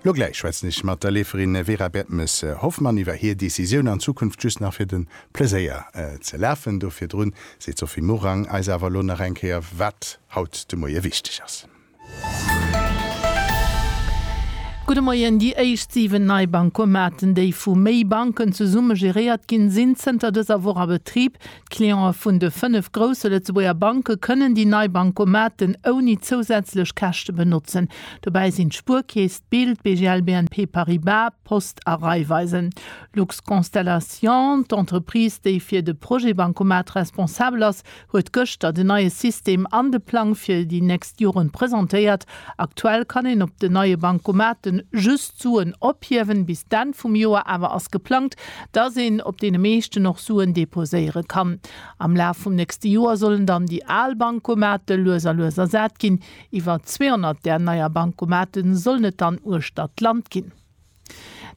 Lo gläich schwätzen ech mat der Leeferin Vera Bertmes-Hoffmann iwwer hir Decisioun an Zukunft just nach fir de Pleséier ze lafen. Do virdrun seet d'Sophie Morang eis awer elo nach eng Kéier wat haut de Moie wichteg ass. Gudde Moien, Déi éischt 7 nei Bancomaten, déi vu méi Banken zesumme geréiert ginn, sinn zënter dëser Woch a Betrib. D'Cliente vun de fënnef grousse Lëtzebuerger Banke kënnen déi nei Bancomaten ouni zousätzlech Käschte benotzen. Dobäi sinn d'Spuerkeess, d'Bild, BGL, BNP Paribas, Post a Raiffeisen. Luxconstellation, d'Entreprise, déi fir de Projet Bancomat responsabel ass, huet gëschter den neie System an de Plang fir déi nächst Joren presentéiert. Aktuell kann een op den neie Bancomaten just Suen ophiewen, bis d'Enn vum Joer awer ass geplangt, dass een op deene meeschten och Suen deposéiere kann. Am Laf vum nächste Joer sollen dann déi al Bancomatë lues a lues ersat ginn. Iwwer 200 där neier Bancomatë sollen et dann uechter d'Land ginn.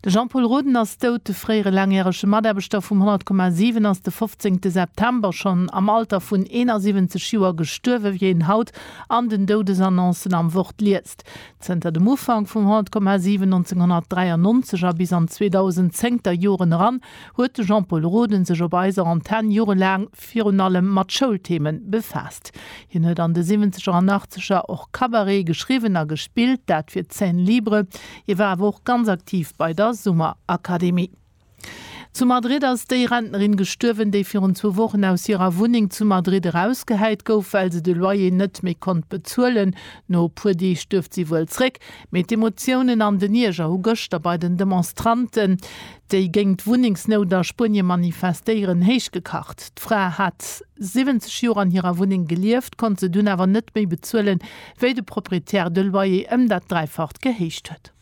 De Jean-Paul Roden ass dout. De fréiere laangjärege Mataarbechter vum 100,7 ass de 15 September schonn am Alter vun 71 Joer gestuerwen, wéi een haut an den Doudesannoncen am Wort liest. Zënter dem Ufank vum 100,7 1993 a bis an 2010 der Joren eran huet de Jean-Paul Roden sech op eiser Antenne jorelaang Text virun allem mat Schoulthemen befaasst. Hien huet an de Siwwenzeger an Achtzeger och Cabaret geschriwwen a gespillt, dat fir d'Scène Libre. Hie war awer och ganz aktiv bei der Summerakademie. Zu Madrid ass déi Rentnerin gestuerwen, déi virun zwou Wochen aus hirer Wunneng zu Madrid erausgehäit gouf, well se de Loyer net méi konnt bezuelen. No e puer Deeg duerft si wuel zréck, mee d'Emotiounen an den Ierger hu gëschter bei den Demonstranten déi géint d'Wunnengsnout a Spuenie manifestéieren, héichgekacht. D'Fra hat 70 Joer an hirer Wunneng gelieft, konnt se dunn awer net méi bezuelen, wéi de Proprietär de Loyer ëm dat Dräifacht gehéicht huet.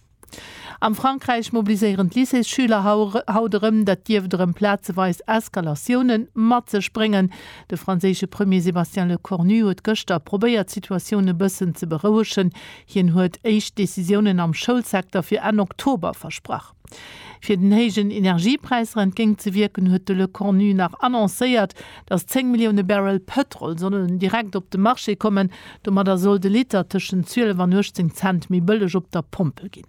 Am Frankräich mobiliséieren d'Lycéesschüler haut erëm. Dat dierft erëm plazeweis Eskalatioune mat sech bréngen. De franséische Premier Sébastien Lecornu huet gëschter probéiert, d'Situatioun e bëssen ze berouegen. Hien huet éischt Decisiounen am Schoulsecteur fir Enn Oktober versprach. Fir den héijen Energiepräisser entgéint ze wierken, huet de Lecornu nach annoncéiert, datt 10 Millioune Barrel Pëtrol sollen direkt op de Marché kommen. Domadder soll de Liter tëschent 12 an 18 Cent méi bëlleg op der Pompel ginn.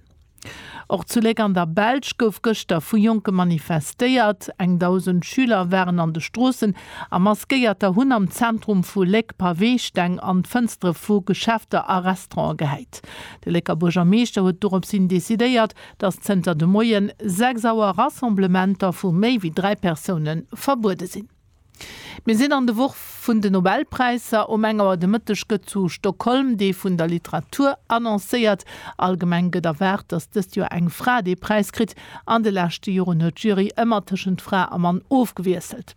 Och zu Léck an der Belsch gouf gëschter vu Jonke manifestéiert. Eng Dausend Schüler waren an de Stroossen a Maskéierter hunn am Zentrum vu Léck Paweesteng an d'Fënstere vu Geschäfter a Restaurante gehäit. De Lécker Buergermeeschter huet doropshin decidéiert, dass zënter de Moien 6 Auer Rassemblementer vu méi wéi 3 Persoune verbuede sinn. Mir sinn an de Woch vun de Nobelpräisser. Um eng Auer de Mëtteg gëtt zu Stockholm dee vun der Literatur annoncéiert. Allgemeng gëtt erwaart, dass dëst Joer eng Fra dee Präis kritt. An de leschte Joren huet d'Jury ëmmer tëschent Fra a Mann ofgewiesselt.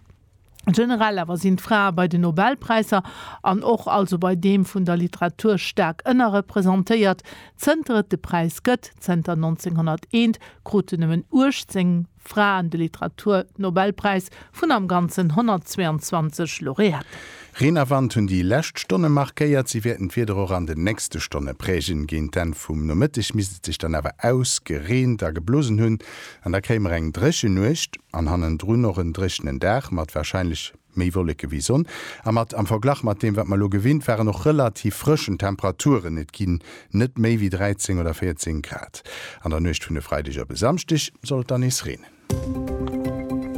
Generell awer sinn d'Frae bei den Nobelpräisser an och also bei deem vun der Literatur staark ënnerrepresentéiert. Zënter et de Präis gëtt, zënter 1901, kruten nëmmen 18 Fraen de Literatur-Nobelpräis vun am Ganzen 122 Laureaten. Reen a Wand hunn déi lescht Stonne markéiert. Si wäerten d'Wieder och an den nächste Stonne prägen. Géint d'Enn vum Nomëtteg misst et sech dann awer ausgereent a geblosen hunn. An da kréie mer eng dréchen Nuecht an hannendrun och en dréchenen Dag mat warscheinlech méi Wolleke wéi Sonn a mat, am Verglach mat deem, wat mer elo gewinnt waren, och relativ frëschen Temperaturen. Et ginn net méi wéi 13 oder 14 Grad. An der Nuecht vun e Freideg op e Samschdeg soll et dann nees reenen.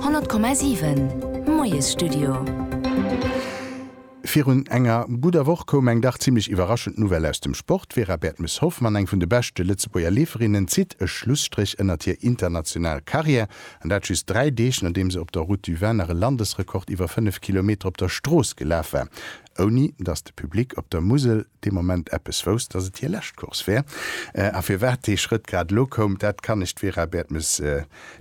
100,7 Moiesstudio. Virun enger gudder Woch koum eng dach zimmlech iwwerraschend Nouvelle aus dem Sport. D'Vera Bertmes-Hoffmann, eng vun de beschte Lëtzebuerger Leeferinnen, zitt e Schlusstréch ënnert hir international Karriär. An dat just dräi Deeg, nodeem se op der Route du Vin nach e Landesrekord iwwer 5 Kilometer op der Strooss gelaf war, ouni datt de Public op der Musel dee Moment eppes wousst, datt et hir lescht Course wär. A firwat dee Schrëtt grad elo koum, dat kann lech d'Vera Bertmes.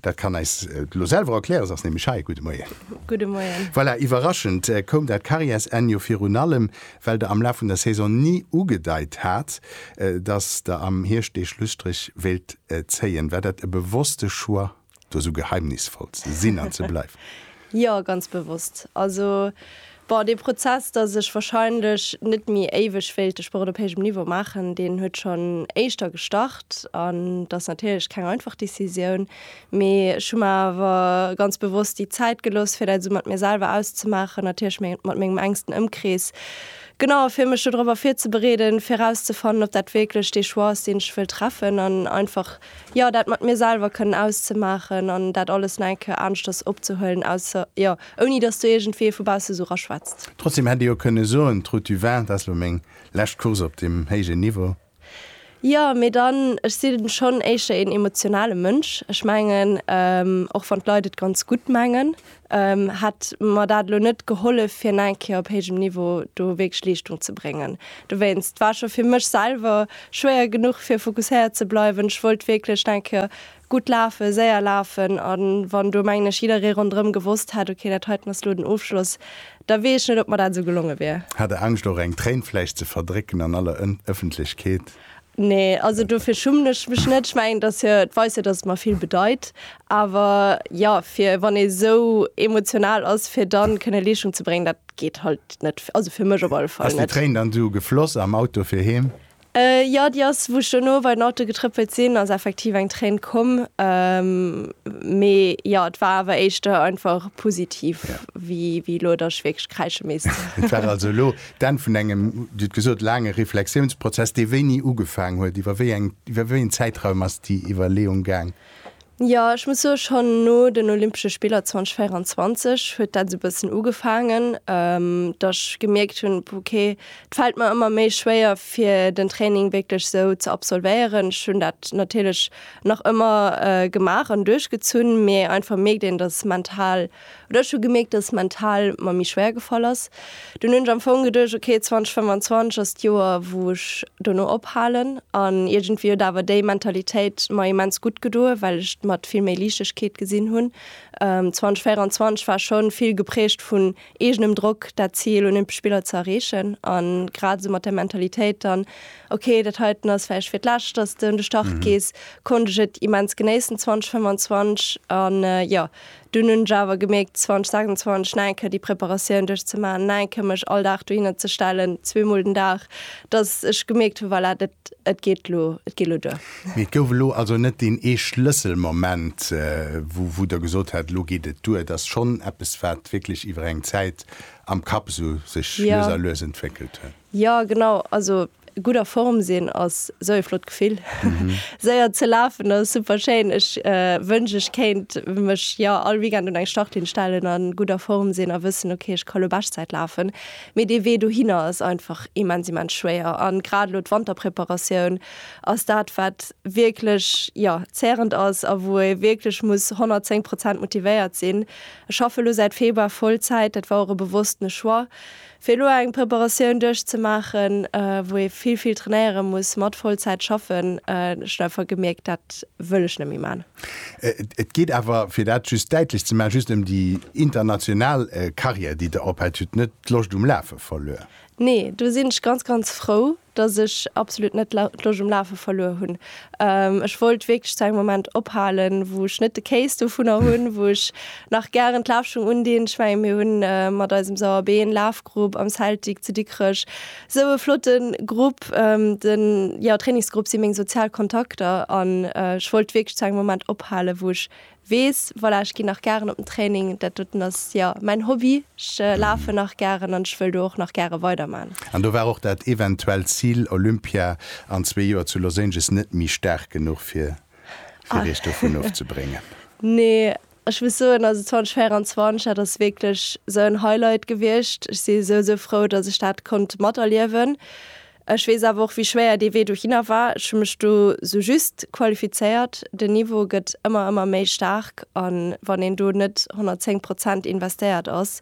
Dat kann eis d'Lo selwer erklären, se ass nämlech hei. Gudde Moien. Gudde Moien. Voilà, iwwerraschend koum dat Karriärsenn jo virun allem, well Der am Laf vun der Saison ni ugedeit hat, dass Der am Hierscht dee Schlusstréch wéilt zéien. War dat e bewosste Choix, do esou geheimnisvoll ze sinn an ze bleiwen? Jo, ganz bewosst. Also, bon, dee Prozess, dass ech wahrscheinlech net méi éiweg wéilt de Sport op héijem Niveau maachen, deen huet schonn éischter gestart. An et ass natierlech keng einfach Decisioun, mee ech hu mer awer ganz bewosst déi Zäit gelooss, fir dat esou mat mir selwer auszemaachen, natierlech mat mengem enksten Ëmkrees, genau, fir mech dodrop virzebereeden, fir erauszefannen, ob dat wierklech dee Choix ass, deen ech wëll treffen an einfach Jo, dat mat mir selwer kënnen auszemaachen an dat alles nach eng Kéier aneschters opzehuelen, ausser, jo, ouni dass do iergendwéi ee vu bausse esou raschwätzt. Trotzdeem hätt ee jo kënne soen, d'Route du Vin, dat ass elo meng lescht Course op deem héijen Niveau. Jo, mee dann, ech sinn schonn éischter een emotionale Mënsch. Ech mengen, och wann d'Leit et ganz gutt mengen, hätt mer dat elo net gehollef fir nach eng Kéier op héijem Niveau do wierklech Leeschtung ze bréngen. Dowéinst war scho fir mech selwer schwéier genuch fir fokusséiert ze bleiwen. Ech wollt wierklech nach eng Kéier gutt lafen, séier lafen a wann do mengen ech jidderee ronderëm gewosst hätt, okay dat heiten ass elo den Ofschloss, da weess ech net ob mer dat esou gelonge wier. Hat der Angscht och eng Tréin vläicht ze verdrécken an aller Ëffentlechkeet? Nee, also dofir schummen ech mech net. Ech mengen, dass jo, et weist jo, dass et mer vill bedeit. Awer jo, fir wann ee sou emotional ass, fir da kënne Leeschtung ze bréngen, dat geet halt net, also fir mech op alle Fall net. Ass déi Tréin dann du gefloss am Auto fir heem? Jo, déi ass, wou ech dono bei den Auto getrëppelt sinn, ass effektiv eng Tréin komm. Mee jo, et war awer éischter einfach positiv, wéi elo, dass ech wierklech kräische misst. Et war also elo D'Enn vun engem, Dir hutt gesot, laange Reflexiounsprozess, dee wéini ugefaang huet. Iwwer wéi eng, iwwer wéi een Zäitraum ass déi Iwwerleeung gaang? Jo, ech muss soen, schonn no den Olympesche Spiller 2024 huet dat esou e bëssen ugefaangen, datt ech gemierkt hunn, ok, et fält mer ëmmer méi schwéier fir den Training wierklech esou ze absolvéieren. Ech hunn dat natierlech nach ëmmer gemaach an duerchgezunn, mee einfach mierkt een, datt mental Oder ech hu gemierkt, dass et mental mer méi schwéier gefall ass. Dunn hunn ech am Fong geduecht, ok, 2025 ass d'Joer, wou ech dono ophalen. An iergendwéi huet awer déi Mentalitéit mer immens gutt gedoen, well ech d'mat vill méi Liichtegkeet gesinn hunn. 2024 war schonn vill geprägt vun eegenem Drock, dat Zil, Olympesch Spiller ze erreechen. An grad esou mat där Mentalitéit dann, ok, dat heiten ass vläicht fir d'lescht, dass s de un de Start gees, konnt ech et immens genéissen 2025. An jo, Dunn hunn ech awer gemierkt, 2026 nach eng Kéier déi Preparatioun duerchzemaachen, nach eng Kéier mech all Dag dohinner ze stellen, zweemol den Dag, dass ech gemierkt hunn, voilà, dat, et geet elo, et geet elo duer. Mee et gouf elo also net deen ee Schlësselmoment, wou, wou Der gesot hätt, elo geet et duer. Et ass schonn eppes, wat wierklech iwwer eng Zäit am Kapp esou sech lues a lues entwéckelt huet. Jo, genau. Also gudd a Form sin ass sou ee flott Gefill. Séier ze lafen ass super schéin. Ech wënsch ech kéint mech jo all Weekend un eng Startlinn stellen an gudd a Form sin a wëssen ok ech ka lo Beschtzäit lafen. Mee dee Wee dohinner ass einfach immens immens schwéier an grad lo d'Wanterpreparatioun ass dat wat wierklech jo zährend ass a wou ee wierklech muss 110 Prozent motivéiert sin. Ech schaffe lo säit Februar Vollzäit, dat war och e bewosstene Choix. Fir elo eng Preparatioun duerchzemaachen, wou ee vill, vill trainéiere muss, mat Vollzäit schaffen, ech hunn einfach gemierkt, dat wëll ech net méi maachen. Et geet awer, fir dat just däitlech ze maachen, just ëm déi international Karriär, déi Der ophält. Dir hutt net d'Loscht um Lafe verluer? Nee, do sinn ech ganz, ganz frou, dass ech absolut net d'Loscht um Lafe verluer hunn. Ech wollt wierklech zu engem Moment ophalen, wou ech net de Kéis dovunner hunn, wou ech nach gären d'Lafschung undinn. Ech mengen, mir hunn mat eisem Sauer Been Lafgrupp am Celtic zu Dikrech esou e flotte Grupp. De jo, Trainingsgrupp si meng sozial Kontakter an ech wollt wierklech zu engem Moment ophalen, wou ech wees, voilà, ech ginn nach gären op den Training, dat doten ass jo mäin Hobby, ech lafen nach gären an ech wëll do och nach gäre weiderman. An do war och dat eventuellt Zil Olympia an zwee Joer zu Los Angeles net méi staark genuch fir fir iech dovun ofzebréngen? Nee, ech muss soen, also 2024, dat ass wierklech esou en Highlight gewiescht, ech si esou esou frou, datt ech dat konnt materliewen, Ech weess awer och, wéi schwéier dee Wee dohinner war. Ech hu mech do sou just qualifizéiert. Den Niveau gëtt ëmmer, ëmmer méi staark a wann een do net 110 Prozent investéiert ass,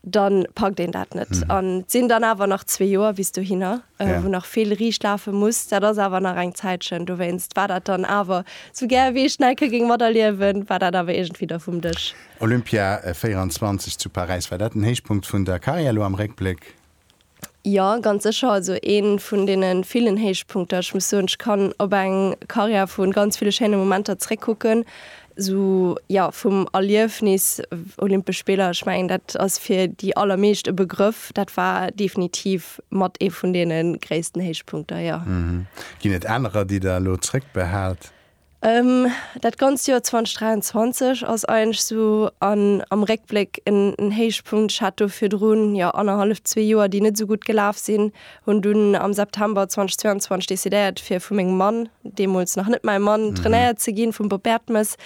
da packt een dat net. An et sinn dann awer nach zwee Joer bis dohinner, wou nach vill riicht lafe muss. Dat ass awer nach eng Zäitchen. Dowéinst war dat dann awer, sou gär wéi ech Nike géing materliewen, war dat awer iergendwéi da vum Dësch. Olympia 24 zu Paräis, war dat den Héichpunkt vun der Karriär elo am Réckbléck? Jo, ganz sécher. Also ee vun deene villen Héichpunkter. Ech muss soen, ech kann op eng Karriär vu ganz ville schéine Momenter zréckkucken. Esou, jo, vum Erliefnis Olympesch Spiller, ech mengen, dat ass fir déi allermeescht e Begrëff. Dat war definitiv mat ee vun deene gréissten Héichpunkter, jo. Ginn et anerer, déi Der elo zréckbehaalt? Dat ganzt Joer 2023 ass eigentlech esou an am Réckbléck en Héichpunkt. Ech hat do virdrun, jo annerhallef, zwee Joer, déi net esou gutt gelaf sinn. Hunn dunn am September 2022 decidéiert fir vu mengem Mann, deemools nach net mäi Mann, trainéiert ze ginn, vum Bob Bertemes.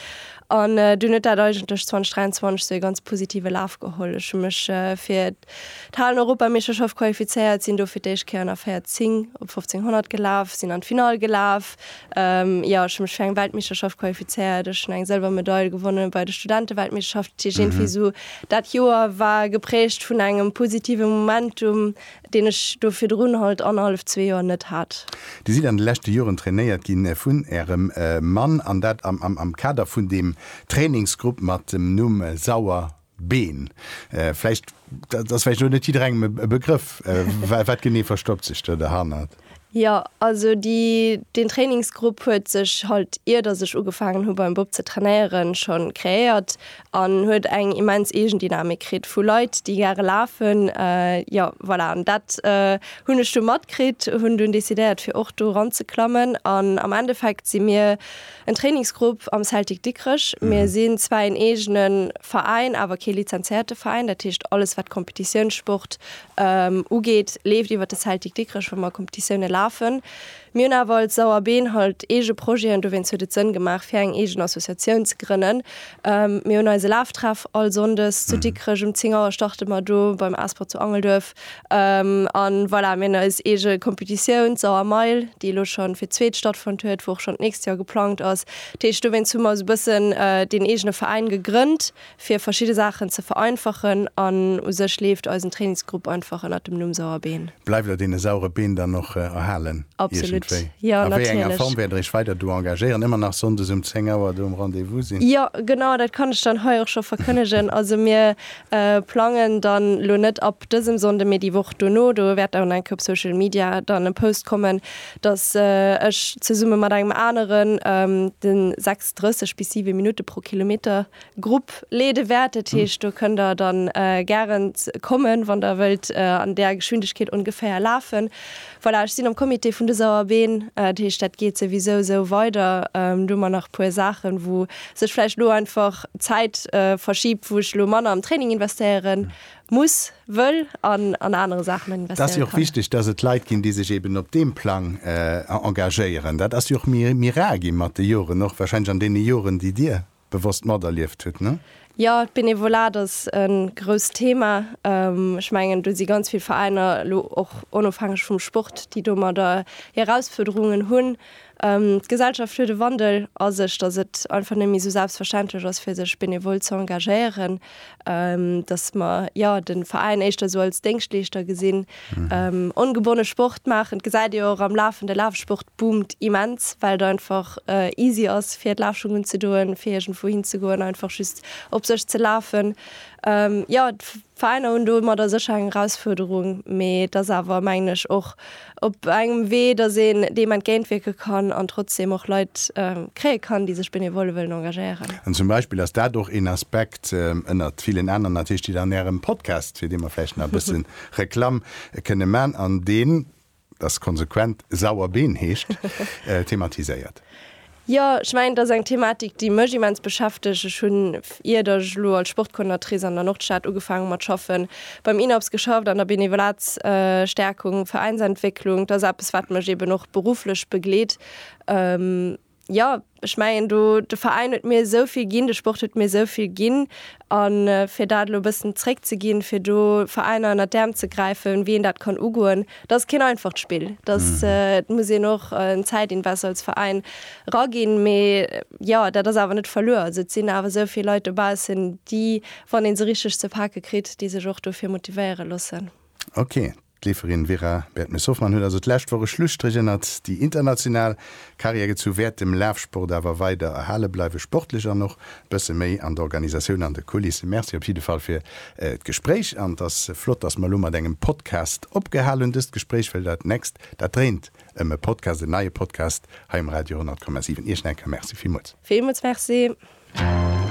An dunn huet dat eigentlech 2023 esou e ganz positive Laf geholl. Ech hu mech fir. D'Halen-Europameeschterschaft qualifizéiert, sinn do fir d'éischt Kéier an der 14 op 1500 gelaf, sinn an d'Finall gelaf. Jo, ech hu mech fir eng Weltmeeschterschaft qualifizéiert. Ech hunn eng Sëlwermedail gewonne bei de Studenteweltmeeschterschaften. Dat heescht iergendwéi esou dat Joer war geprägt vun engem positive Momentum, deen ech do virdrun halt annerhallef, zwee Joer net hat. Dir sidd an de leschte Joren trainéiert gi vun Ärem Mann, an dat am Kader vun deem Trainingsgrupp mat dem Numm Sauer Been. Vläicht, dat ass vläicht och net jidderengem e Begrëff. Wat genee verstoppt sech do derhannert? Jo, also déi, deen Trainingsgrupp huet sech halt, iert datt ech ugefaangen hu beim Bop ze trainéieren, schonn kreéiert an huet eng immens Eegendynamik kritt vu Leit, déi gare lafen. Jo, voilà, an dat hunn ech du matkritt, hunn dunn decidéiert, fir och do eranzeklammen an am Endeffekt si mir, En Trainingsgrupp am Celtic Dikrech. Mir sinn zwar een eegene Veräin, awer kee lizenzéierte Veräin. Dat heescht, alles, wat Kompetitiounssport ugeet, leeft iwwer de Celtic Dikrech, wou mer Kompetitioune lafen. Mir hunn awer als Sauerbeen halt eege Projeten, dowéinst huet et Sënn gemaach, fir eng eegen Associatioun ze grënnen. Mir hunn eise Laftreff all Sonndes zu Dikrech. Um 10 Auer starte mer do beim Asper zu Angelduerf. An voilà, mir hunn eis eege Competitioun, d'Sauer Mail, déi elo scho fir d'zweet stattfonnt huet, wou och schonn d'nächst Joer geplangt ass. Dat heescht, dowéinst hu mer esou e bëssen deen eegene Veräin gegrënnt, fir verschidde Saachen ze vereinfachen. An u sech leeft eisen Trainingsgrupp einfach ënnert dem Numm Sauer Been. Bleift der dee saure Been dann och erhalen iergendwéi? A wéi enger Form wäert der iech weider do engagéieren? Ëmmer nach sonndes um 10 Auer do um Rendez-vous sinn? Jo, genau, dat kann ech dann hei och scho verkënnegen. Also mir Plangen dann lo net ab dësem Sonnden mee déi Woch dono, do wäert dann enke op Social Media dann e Post kommen dass ech zesummen mat engem aneren den 36 bis 7 Minutten pro Kilometer Grupp leeden wäert. Dat heescht do kënnt der dann gären kommen wann der wëllt an där Geschwindegkeet ongeféier lafen. Voilà, ech sinn am Comité vun de Sauerbeen, dat heescht, dat geet souwisou esou weider. Do hu mer nach e puer Saachen, wou sech vläicht elo einfach d'Zäit verschiebt, wou ech elo manner am Training investéiere muss, wëll an an anere Saachen investéiere kann. Dat ass jo och wichteg, dass et Leit ginn, déi sech eben op deem Plang engagéieren. Dat ass jo och méi rar gi mat de Joren, och warscheinlech an deene Joren, déi Dir bewosst materlieft huet, ne? Jo, d'Benevolat ass e grousst Thema. Ech mengen, do si ganz vill Veräiner, elo och onofhängeg vum Sport, déi domadder hir Erausfuerderungen hunn. D'Gesellschaft huet e Wandel a sech, datt et einfach net méi esou selbstverständlech ass, fir sech benevol ze engagéieren. dass mer ja den Veräin éischter sou als Déngschtleeschter gesinn. Mhm. Ongebonne Sport maachen, dat gesäit Dir jo och am Lafen, de Lafsport boomt immens, well et einfach easy ass fir d'Lafschungen ze doen, fir iergendwou hin ze goen, einfach just op sech ze lafen. Ja, d'Veräiner hunn domadder sécher eng Erausfuerderung, mee et ass awer mengen ech och op engem Wee, datt een deem entgéintwierke kann an trotzdeem och Leit kréie kann, déi sech benevole wëllen engagéieren. An zum Beispill ass dat och een Aspekt, ënnert villen aneren natierlech, deen an Ärem Podcast, fir dee mer vläicht nach e bësse Reklamm kënne man an deen, dat ass konsequent, Sauer Been heescht, thematiséiert. Jo, ech mengen, et ass eng Thematik, déi mech immens beschäftegt. Ech hunn, ier datt ech elo als Sportcoordinatrice an der Nordstad ugefaangen hu mat schaffen, beim INAPS geschafft an der Benevolatstärkung, Veräinsentwécklung. Et ass eppes, wat mech eben och berufflech begleet. Jo, ech mengen do, de Veräin huet mir esou vill ginn, de Sport huet mir esou vill ginn a fir dat elo e bëssen zréckzeginn, fir do Veräiner ënnert d'Äerm ze gräifen, wéi een dat kann ugoen, Dat ass keen einfacht Spill. Dat muss een och en Zäitinvest als Veräin eraginn. Mee jo, dat ass awer net verluer. Also et sinn awer esou vill Leit dobaussen, déi, wann ee se richteg ze pake kritt, déi sech och dofir motivéiere loossen. Ok, d'Leeferin Vera Bertmes-Hoffmann huet also d'lescht Woch e Schlusstréch ënnert déi international Carrière gezu, wäert dem Lafsport awer weider erhale bleiwen, sportlech an och bësse méi an der Organisatioun an de Kulisse. Merci op jidde Fall fir d'Gespréich an et ass flott, dass mer elo mat engem Podcast opgehal hunn dëst Gespréich, well dat nächst, dat dréint ëm e Podcast, en neie Podcast hei um Radio 100,7. Iech nach eng Kéier Merci villmools. Villmools Merci.